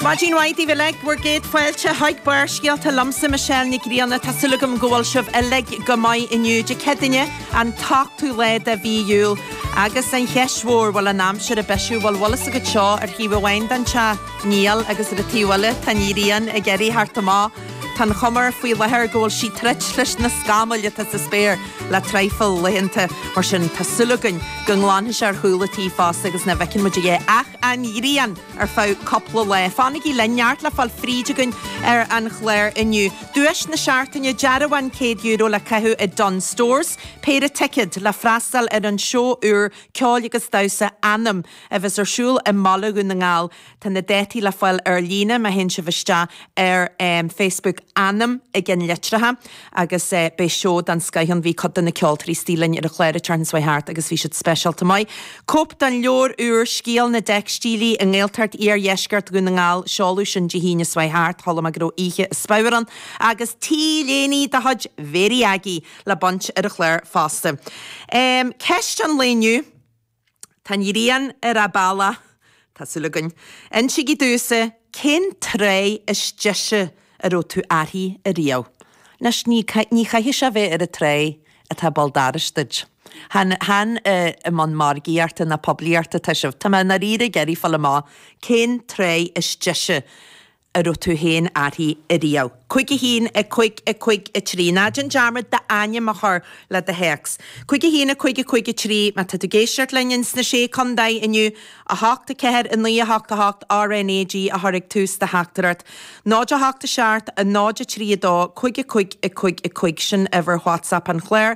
Maidin mhaith daoibh uilig, bhur gcéad fáilte chuig Barrscéalta liomsa Michelle Nic Grianna. Tá súil agam go bhfuil sibh uilig go maith inniu. Dé Céadaine, an t-ochtú lá de mhí Iúil. Agus an cheist mhór, bhfuil an aimsir ag bisiú? Bhuel, bhfuil a fhios agat seo, ar thaobh amháin den teach, níl, agus ar an taobh eile, tá an ghrian ag iarraidh a theacht amach. Tá an chuma air faoi láthair go bhfuil sí ag troid leis na scamaill atá sa spéir le traidhfil laethanta, mar sin tá súil againn go nglanfaidh sé ar chúla tí fosta agus nach bhfeiceann muid a dhath ach an ghrian ar feadh cúpla lá. Fanaigí linn, neart le fáil tríd againn ar an chlár inniu. Duais na seachtaine, dearbhán €100 le caitheamh i Dunnes Stores, péire ticead le freastal ar an seó úr ceoil agus damhsa Anam a bheas ar siúl i mBaile Dhún na nGall. Tá na dátaí le fáil ar líne má théann sibh isteach ar Facebook Anam i gceannlitreacha. agus beidh seó den scoith ann. Bhí cuid de na ceoltóirí istigh linn ar an chlár an tseachtain seo chuaigh thart agus bhí siad speisialta maith. Cóip den leabhar úr Scéal na dTeicstílí i nGaeltacht Iardheisceart Dhún na nGall, seoladh sin Dé hAoine seo chuaigh thart, chuala mé go raibh oíche ar dóigh ann agus t-léiní de chuid Very Aggie le baint ar an chlár fosta. Ceist an lae inniu. Tá an ghrian ar an bhealach. Tá súil againn. Insígí domhsa cén tráigh is deise a raibh tú uirthi ariamh. Anois, ní, ní chaithfidh sé a bheith ar an tráigh atá béal dorais duit. Chan, chan i mbun margaíochta ná poiblíochta, atá sibh, tá mé i ndáiríre ag iarraidh fáil amach, cén tráigh is deise a raibh tú féin uirthi ariamh. Cúig a haon, a cúig, a cúig a trí. Ná déan dearmad d'ainm a chur le do théacs. Cúig a haon, a cúig, a cúig a trí, má tá tú ag éisteacht linn ins na Sé Condae inniu, a hocht, a ceathair, a naoi, a hocht, a hocht, RNAG a chur ag tús do theachtaireacht. Náid a hocht a seacht, a náid a trí a dó, cúig a cúig, a cúig, a cúig, sin uimhir WhatsApp an chláir.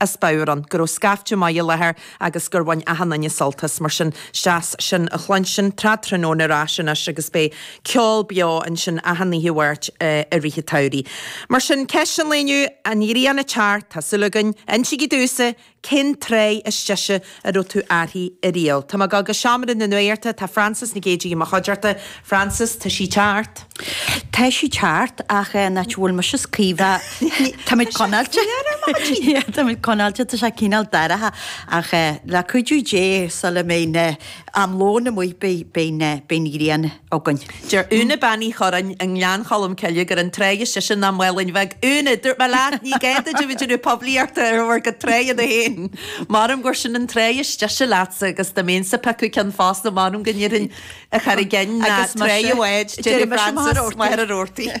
a spadhrán, go raibh scaifte maith i láthair agus gur bhain achan duine sult as. Mar sin, is deas sin a chluinstin, Trad Tráthnóna ar ais anois agus beidh ceol beo ansin achan oíche Mháirt i rith an tsamhraidh. Mar sin, ceist an lae inniu, an ghrian ag teacht, tá súil againn. Insigí domhsa cén tráigh is deise a raibh tú uirthi ariamh. Tá mé ag dul go Seomra na Nuachta. Tá Frances Nic Géidigh i mo chuideachta. Frances, tá sí ag teacht? Tá sí ag teacht, ach an áit a bhfuil mise is Caoimhe. Táimid conáilte. Táimid conáilte, tá sé cineál dorcha, ach le cuidiú Dé, sula mbeidh na, am lóin amuigh, beidh, beidh na, beidh an ghrian. againn. Deir Úna Bean Uí Chorráin i nGleann Cholm Cille gur an tráigh is deise ná Málainn Bhig. Úna, dúirt mé leat, ní gá duit a bheith ag déanamh poiblíochta ar bhur gcuid tráigheanna féin! Maram gur sin an tráigh is deise leatsa agus dá mbeinn ag piocadh ceann fosta maram go ndéarfainn An Charraig Fhinn ná Tráigh an Bháid, deireadh Frances, Machaire Rabhartaigh.